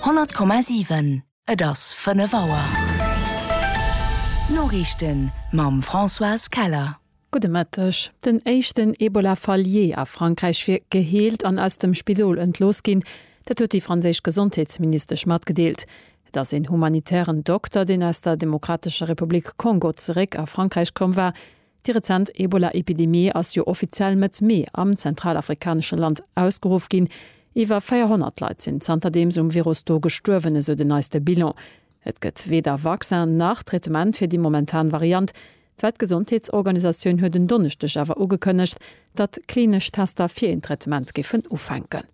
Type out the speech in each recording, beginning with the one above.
100,7 Et ass 5 Auer. D'Noriichten mam Françoise Keller. Gudde Mëtteg. Den éischten Ebola-Fall jee a Frankräich wier geheelt an aus dem Spidol entlooss ginn. Dat huet déi franséisch Gesondheetsministesch matgedeelt. Et ass een humanitären Dokter, deen aus der Demokratescher Republik Kongo zeréck a Frankräich komm war. Déi rezent Ebola-Epidemie ass jo offiziell Mëtt Mee am zentralafrikanesche Land ausgeruff ginn. Iwwer 400 Leit sinn zanterdeems um Virus do gestuerwen, esou den neiste Bilan. Et gëtt weder Vaccin nach Traitement fir déi momentan Variant. D'Weltgesondheetsorganisatioun huet en Donneschdeg awer ugekënnegt, datt klinesch Tester fir een Traitement géifen ufänken.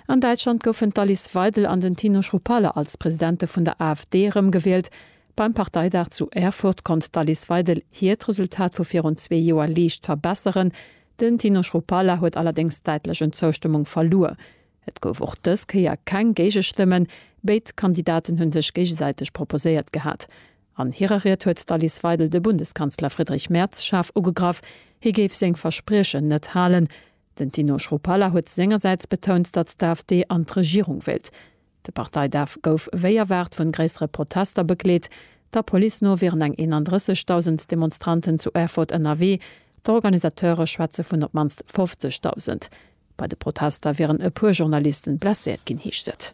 An Däitschland goufen d'Alice Weidel an den Tino Chrupalla als Presidente vun der AfD erëmgewielt. Beim Parteidag zu Erfurt konnt d'Alice Weidel hiert Resultat vu virun zwee Joer liicht verbesseren. Den Tino Chrupalla huet allerdéngs däitlech un Zoustëmmung verluer. Et gouf och dës Kéier keng Géigestëmmen. Béid Kandidaten hu sech géigesäiteg proposéiert gehat. An hirer Ried huet d'Alice Weidel de Bundeskanzler Friedrich Merz schaarf ugegraff, hie géif seng Verspriechen net halen. Den Tino Schroepala huet sengersäits betount, datt d'AfD an d'Regierung wéilt. De Parteidaf gouf wéi erwaart vun gréissere Protester begleet. Der Police no wieren eng 31.000 Demonstranten zu Erfurt ënnerwee, d'Organisateure schwätze vun op d'mannst 50.000. Bei de Protester wieren e puer Journalisten blesséiert ginn, heescht et.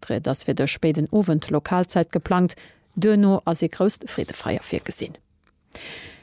D'Ried ass fir de spéiden Owend Lokalzäit geplangt, duerno ass ee grousst Freedefeier virgesinn.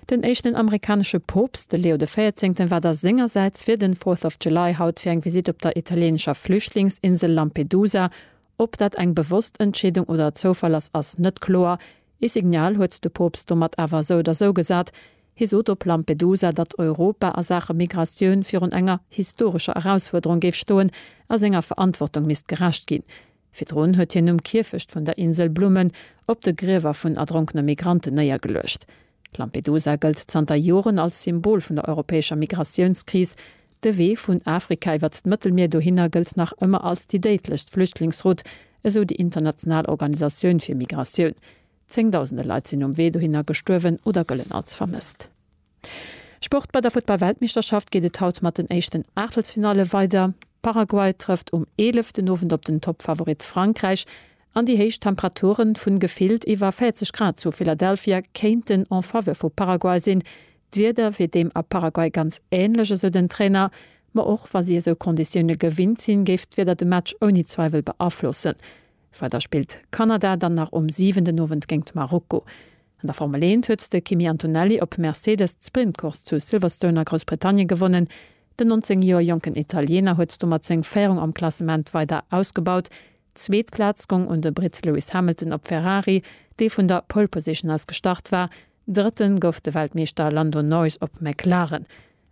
Den éischten amerikanesche Poopst, de Leo de Véierzéngten, war da sengersäits fir den Fourth of July haut fir eng Visitt op der italieenescher Flüchtlingsinsel Lampedusa. Ob dat eng bewosst Entscheedung oder Zoufall ass, ass net kloer. Ee Signal huet de Poopst domat awer esou oder esou gesat. Hie sot op Lampedusa, datt Europa a Saache Migratioun virun enger historescher Erausfuerderung géif stoen a senger Verantwortung misst gerecht ginn. Virdrun huet hien um Kierfecht vun der Insel Blummen op de Griewer vun erdronkene Migranten néiergeluecht. Lampedusa gëllt zanter Joren als Symbol vun der europäescher Migratiounskris. De Wee vun Afrika iwwert d'Mëttelmier dohinner gëllt nach ëmmer als déi déidlechst Flüchtlingsroute, esou déi international Organisatioun fir Migratioun. Zéngdausende Leit sinn um Wee dohinner gestuerwen oder gëllen als vermësst. Sport, Bei der Futtball-Weltmeeschterschaft geet et haut mat den éischten Aachtelsfinalle weider. Paraguay trëfft um 11 den Owend op den Toppfavorit Frankräich an déi héich Temperature vun gefillt iwwer 40 Grad zu Philadelphia kéinten en Faveur vu Paraguay sinn. D'Wieder wier deem a Paraguay ganz änlech, esou den Trainer. Ma och wa si esou Konditioune gewinnt sinn, géif d'Wieder de Match ouni Zweiwel beaflossen. Weider spillt Kanada dann nach um siwenden Owend géingt Marokko. An der Formel eent huet de Kimi Antonelli op Mercedes d'Sprintcourse zu Silverstone a Groussbritannien gewonnen. Den 19 Joer jonken Italiener huet domat seng Féierung am Klassement weider ausgebaut. D'zweet Plaz gong un de Britt Lewis Hamilton op Ferrari, dee vun der Pole Position aus gestart war. Drëtten gouf de Weltmeeschter Lando Norris op McLaren.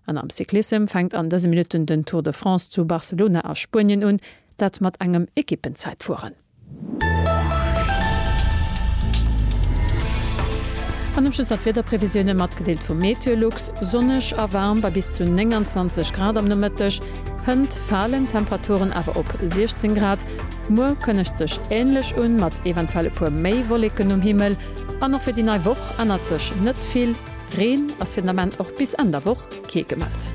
An am Cyclissem fänkt an dëse Minutten den Tour de France zu Barcelona a Spuenien un, dat mat engem Ekippenzäitfueren. An um Schluss nach d'Wiederprevisioune matgedeelt vum Meteolux, Sonneg a waarm bei bis zu 29 Grad am Nomëtteg, hënt falen d'Temperaturen awer op 16 Grad. Muer kënnegt sech änlech un, mat eventuell e puer méi Wolleken um Himmel. An och fir déi nei Woch ännert sech net vill. Reen ass fir den Ament och bis Enn der Woch kee gemellt.